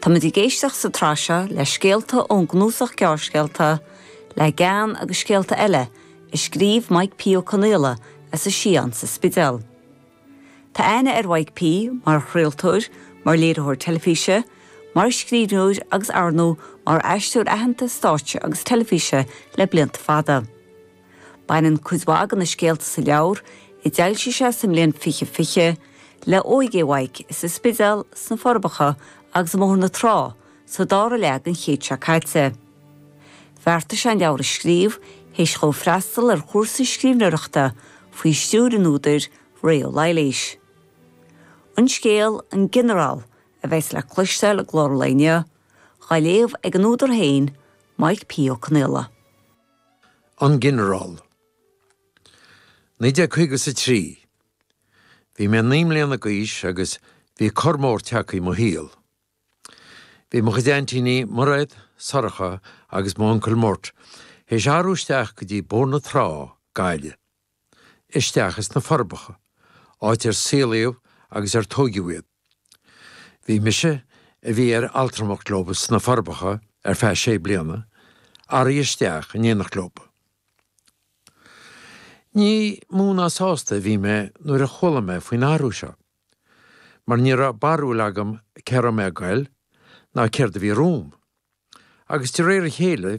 Táimid ag éisteacht sa tsraith seo le scéalta ón gcnuasach gearrscéalta Le Gean agus Scéalta Eile a scríobh Mike P. Ó Conaola as an Sián sa Spidéal. Tá aithne ar Mhike P. mar chraoltóir, mar léiritheoir teilifíse, mar scríbhneoir agus, arnó, mar aisteoir aitheanta stáitse agus teilifíse le blianta fada. Baineann cuid mhaith de na scéalta sa leabhar, a d'fhoilsigh sé sa mbliain fiche fiche, le óige Mhaidhc sa Spidéal, sna Forbacha agus i mBóthar na Trá sa dara leath den chéad seo caite. Bheartaigh sé an leabhar a scríobh théis dhó freastal ar chúrsa scríbhneoireachta faoi stiúir an údair, Ré Ó Laighléis. An scéal, An Ginearál, a bheas le cloisteáil i gclár an lae inniu, á léamh ag an údar féin, Maidhc P. Ó Conaola. An Ginearál. 1953. Bhí mé naoi mbliana d'aois agus bhí cor mór teagtha i mo shaol. Bhí mo chuid aintíní, Mairéad, Sorcha agus m'uncail Murt, théis athrú isteach go dtí Bóthar na Trá, Gaillimh. isteach as na Forbacha, áit ar saolaíodh agus ar tóigeadh iad. Bhí mise, a bhí ar altramacht leo sna Forbacha ar feadh sé bliana, athraithe isteach in éineacht leo. Ní mó ná sásta a bhí mé nuair a chuala mé faoin athrú seo, mar ní raibh barúil agam cé a raibh mé a ghoil ná céard a bhí romham, agus de réir a chéile bhí